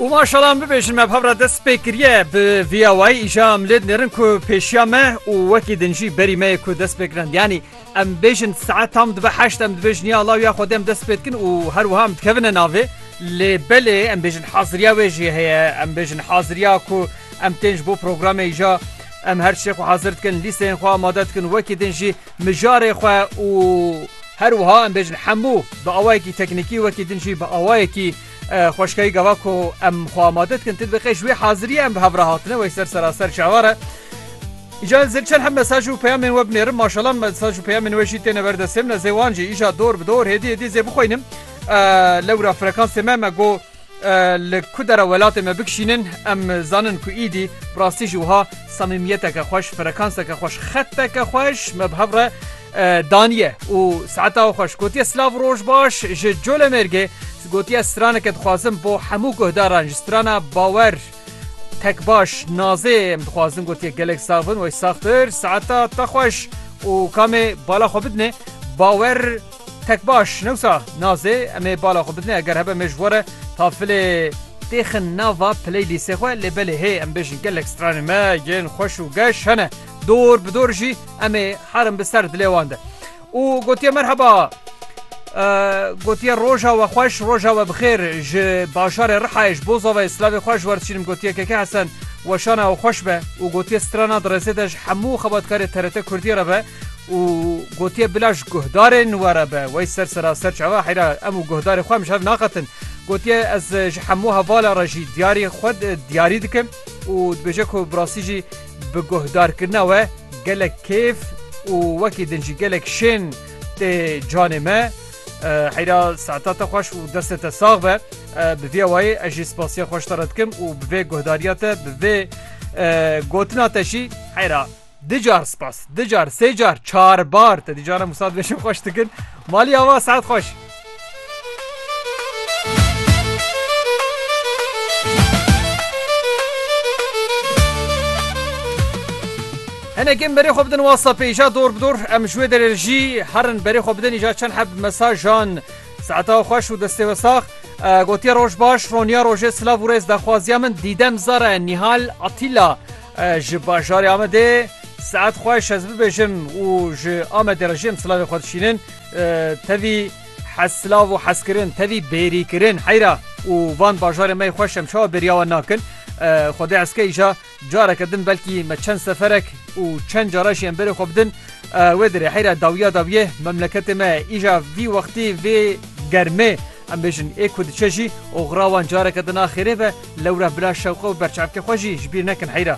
û maşalan bibêjin me bhavra dest pê kiriye bi viya wayî îja em lê dinêrin ku pêşiya me û wekî din jî berî me yê ku dest pê kirin yanî em bêjin saet tam dibe heşt em dibêjin ya Allah ya Xwedê em dest pê dikin û her wiha em dikevine navê lê belê em bêjin haziriya wê jî heye em bêjin haziriya ku em tên ji bo programê îja em her şê xwe hazir dikin lîsteyên xwe amade dikin wekî din jî mijarê xwe û her wiha em bêjin hemû bi awayekî teknîkî wekî din jî bi awayekî xweşkayî gava ku em xwe amade dikin tu diqê ji wê hazirî em bi hev re hatine wey ser seraser çavar e. Îca ez zilçen hem mesaj û peyamên we binêrim maşalan mesaj û peyamên we jî têne ber destê min ez ê wan jî îja dor bi dor hêdî hêdî zê bixweynim lewra frekansê me me got Li ku dera welatê me bikşînin em zanin ku îdî bi rastî jî wiha samîmiyeteke xweş, frekanseke xweş, xeteke xweş me bi hev re daniye û saeta we xweş gotiye. Silav û roj baş ji Colemêrgê gotiye straneke dixwazim bo hemû guhdaran ji strana bawer tek baş nazê em dixwazin gotiye gelek sax bin wey saxtir saeta te xweş û kamê bala xwe bidinê bawer Tek baş newsa nazê em ê bala xwe bidinê eger hebe me ji we re tafilê têxin nava play lîsê xwe lê belê hê em bêjin gelek stranên me yên xweş û geş hene dor bi dor jî em ê herin bi ser dilê wan de û gotiye merheba gotiye roja we xweş roja we bixêr ji bajarê rihayê ji boza ve slavê xweş werçînim gotiye keke hesen weşana ew xweş be û gotiye strana di rêzê de ji hemû xebatkarê TRT Kurdiyê re be. û gotiye bila ji guhdarê nû were be wey ser sera ser çava heyra em û guhdarê xwe em ji hev naqetin. Gotiye ez ji hemû hevala re jî diyarî xwe diyarî dikim û dibêje ku bi rastî jî bi guhdarkirina we gelek kêf û wekî din jî gelek şên tê canê me. Heyra saeta te xweş û destê te sax be. Bi vîya wayê ez jî spasiya xwe ji te re dikim û bi vê guhdariya te bi vê gotina te jî heyra Du car spas. Du car, sê car, çar bar. Te dî caran wisa dibêjim xweş dikin. Malî ava saet xweş. Hinekin berê xwe bidin WhatsAppê îja dor bi dor em ji wê derê jî herin berê xwe bidin îja çend heb mesajan saeta xweş û destê we sax gotiya roj baş roniya rojê silav û rêz daxwaziya min dîdem zara nîhal atîla Ji bajarê Amedê saet xweş ez bibêjim û ji Amedê re jî em silavê xwe dişînin. Tevî hezsilav û hezkirin, tevî bêrîkirin heyra û van bajarê me yê xweş em çawa bêriya wan nakin. Xwedê eske îja careke din belkî me çend seferek û çend cara jî em berê xwe bidin. Wê dirê heyra dawiya dawiyê memleketê me îja vî wextî vê germê. Em bêjin ê ku diçe jî oxira wan careke din a xêrê ve, lewre bila şewqe û berçavkê xwe jî ji bîr nekin heyra.